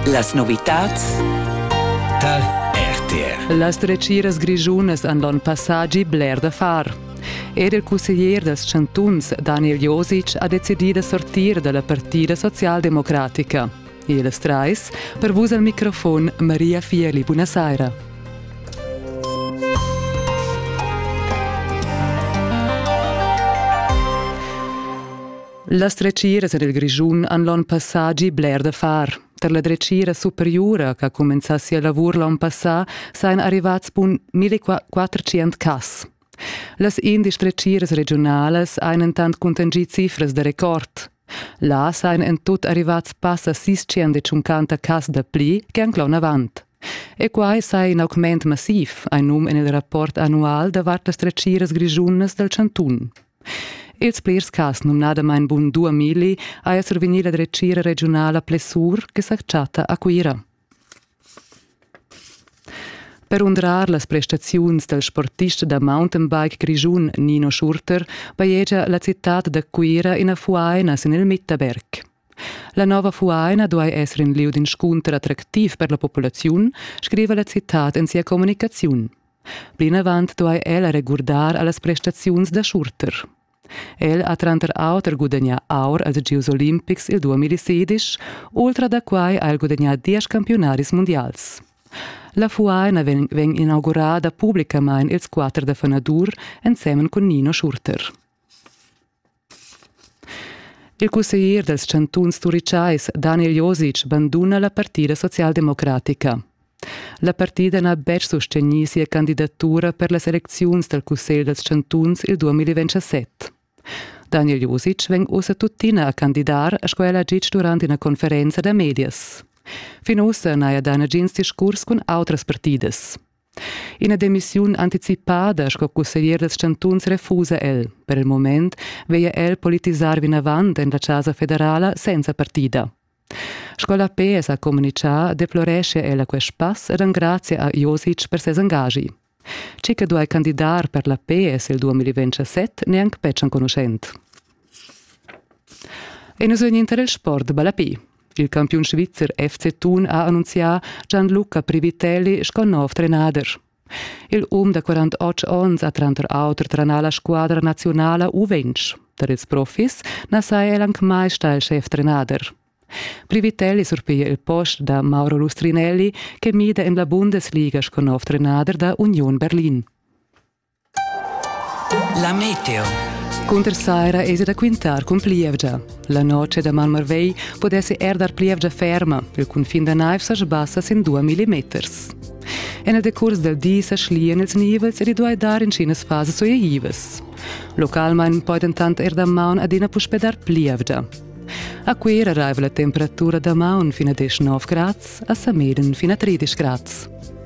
Las novitads tal RTR. Las dretgiras grischunas han l'onn passagi bler da far. Era il cusseglier dals chantuns Daniel Josic ha decidì da sortir da la partida socialdemocratica. Ils trais, per vus al microfon Maria Fieli, buonasera. Las dretgiras en il Grischun han l'onn passà gì bler da far. Tar la dretgira superiura ch'ha cumenzà sia lavur l'onn passà sajan arrivads bun 1400 cas. Las indesch dretgiras regiunalas han entant cuntanschì cifras da record. Là sajan en tut arrivads passa 650 cas da pli che anc l'onn avant. E quai sa in augment massiv, hai num en il rapport annual davart las dretgiras grischunas dal chantun. Ils plirs cas numnadamain bun duamilli ha esser vegnì la dretgira regiunala Plessur che sa chatta a Cuira. Per undrar las prestaziuns dal sportist da mountainbike grischun Nino Schurter bajegia la citad da Cuira ina fuaina sin il Mitterberg. La nova fuaina duai esser in lieu d'inscunter attractiv per la populaziun, scriva la citad en sia communicaziun. Plinavant duai ella regurdar a las prestaziuns da Schurter. El ha tranter auter gudagnà aur als Gieus olimpics il 2016, ultra da quai ha el gudagnà diesch campiunaris mundials. La fuaina vegn, vegn inaugurada publicamain ils quatter da fanadur ensemen cun Nino Schurter. Il cusseglier dals chantuns turitschais Daniel Josic banduna la partida socialdemocratica. La partida n'ha betg sustegnì sia candidatura per las elecziuns dal cussegl dals chantuns il 2027. Daniel Josic vegn ussa tuttina a candidar sco el ha ditg durant ina conferenza da medias. Fin ussa n'haja dà nagins discurs cun autras partidas. Ina demissiun anticipada sco cusseglier dals chantuns refusa el. Per il moment veglia el politisar vinavant en la Chasa federala senza partida. Sco la PS ha communitgà deploreschia el a quest pass ed engrazia a Josic per ses engagi. Tgi che duai candidar per la PS il 2027 neanc betg enconuschent. E nus vegnin tar il sport balapi. Il campiun svizzer FC Thun ha annunzià Gianluca Privitelli sco nov trenader. Il um da 48 onns ha tranter auter tranà la squadra nazionala U20. Per ils profis na saja el anc mai stà il chef-trenader. Privitelli surpiglia il post da Mauro Lustrinelli che mida en la Bundesliga sco nov trenader da Union Berlin. La meteo. Cunter saira es da quintar cun plievgia. La noce da Malmarvei podesse er dar plievgia ferma. Il cunfin da naiv sa sbassa sin 2 mm. En il decurs del di sa schlian ils nivels ed i duai dar intschinas fases suitivas. Localmain poi dentant er damaun adina puspè dar plievgia. A Cuira arriva la temperatura damaun fin a 19 grads, a Sameden fin a 13 grads.